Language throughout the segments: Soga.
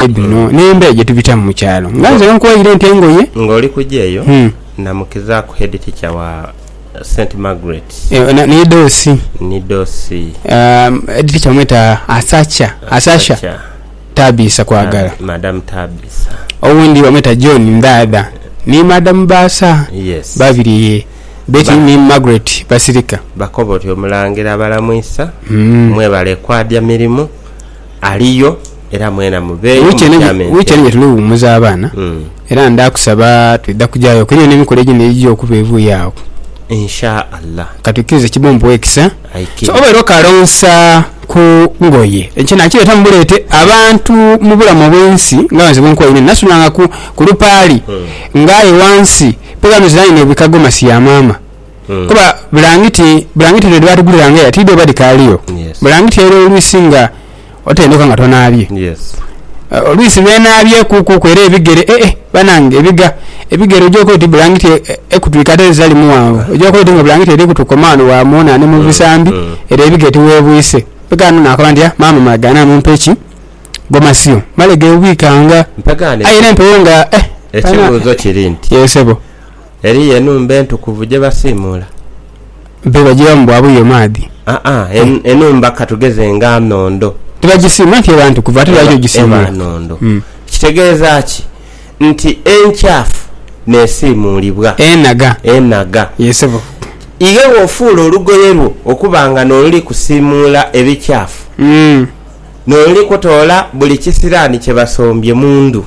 Ente dhino n'embea gye tubitamu mu kyalo. Nga nze wenkuwaire ente engoye. Ng'oli kuja eyo, namukizaaku headteacher wa St. Margaret. Eyo ni doosi. Ni doosi. Headteacher bamweta Asacha, Asasha Tabiisa Kwagala. Madam Tabiisa. Owundi bamweta John Ndhaadha ni Madam Baasa. Yes. Babiri ye Betty ni Margaret Basirika. Bakoba oti Omulangira abalamwisa. Mwebale kwadya mirimu. Aliyo, era mwena muveeyo Wiiki eno mutyame wiiki eno gye ntebe. tuli ghumuza abaana Mm. era ndha kusaba twidha kujayoku eriyo n'emikolo egindhi egigya okuba evuye agho. Insha Allah. Ka twikirize kibe ompuwe ekisa. Aye So kiri. oba era okalonsa ku ngoye, ekyo nakireeta mu buleete. Abantu mu bulamu obw'ensi nga nze bwe nkoye nini, nasulanga ku ku lupaali nga aye wansi mpegho ano ziraine ebikago masiya maama. Kuba bulangiti, bulangiti dhino dhebaatuguliranga era tiidho oba dhikaaliyo. Bulangiti eyo olwisi nga otenduka nga tonaabye. Olwisi lwenaabyeekuukuku era ebigere ee banange ebiga. Ebigere ogyooka oti bulangiti ekutwika ate dhitali mughanvu. Ogyooka oti nga bulangiti eri kutukoma ghano bwa muuna ni mu bisambi ere ebigere tiweebwise. Mpeka ghano nakoba nti haa maama malegaane amumpe ki? Gomasio. Male geebwikanga. Aye era empewo nga eh! Ekibuuzo kiri nti. Yee sebo. Eriyo enhumba entukuvu gye basiimuula? Be bajilamu bwa buyo maadhi? Aa, enhumba ka tugeze nga nhondo. Tibagisiimula nti eba ntukuvu ate lwaki ogisiimula? Eba nhondo. Kitegeeza ki? Nti enkyafu n'esiimuulibwa. Enhaga. Enhaga. Yee sebo. Ighe bw'ofuula olugoye lwo okuba nga n'oluli kusiimuula ebikyafu, n'oluli kutoola buli kisiraani kye basombye mu ndhu.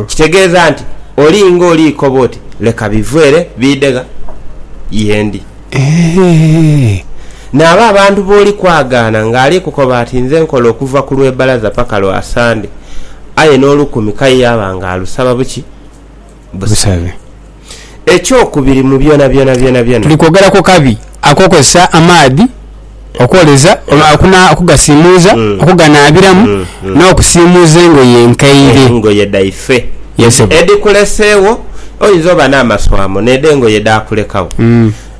Kitegeeza nti oli nga oli koba oti, Leka bive ere biidhe gha ye ndi. Naabo abantu b'oli kwagaana ng'ali kukoba ati nze nkola okuva ku Lwebalaaza paka lwa Sande, aye n'olukumi k'aye yaaba ng'alusaba buki busabe. Ekyokubiri, mu byona byona byona byona. Tuli kwogera ku kabi ak'okukozesa amaadhi okwoleza oba okugasiimuuza, okuganaabiramu, n'okusiimuuza engoye enkaire. Engoye dhaife edhikuleseegho. Oyinza oba n'amaswamo n'edho engoye dhaakulekagho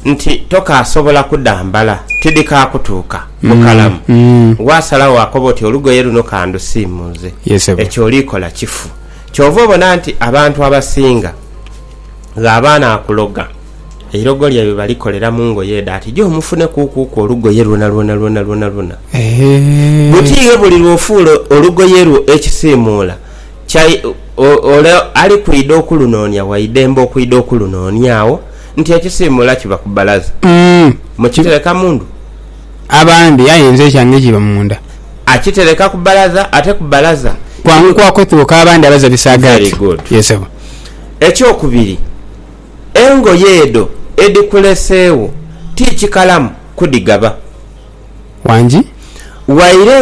nti tokaasobola kudhambala, tidhikaakutuuka bukalamu. Waasalagho waakoba oti olugoye luno ka ndusiimuuze, ekyo oli kola kifu. Kyova obona nti abantu abasinga ghaba anaakuloga, eirogo lyaibwe balikolera mu ngoye edho ati jo mufune kuukuuku olugoye lwonalwona lwonalwonalwona. Butiighe buli lw'ofuula olugoye lwo ekisiimuula kya ole ali kwidha okulunoonia waidembe okwidha okulunooniagho nti ekisiimuula kiba ku bbalaza. Mukitereka mu ndhu. abandi aye nze ekyange kiba munda. Akitereka ku balaza ate ku balaza. Kwangu kwa kwetuuka abandi abaza bisaagaati. Yes sebo. Ekyokubiri, engoye edho edhikuleseegho ti kikalamu kudhigaba. Wangi. Waire nga.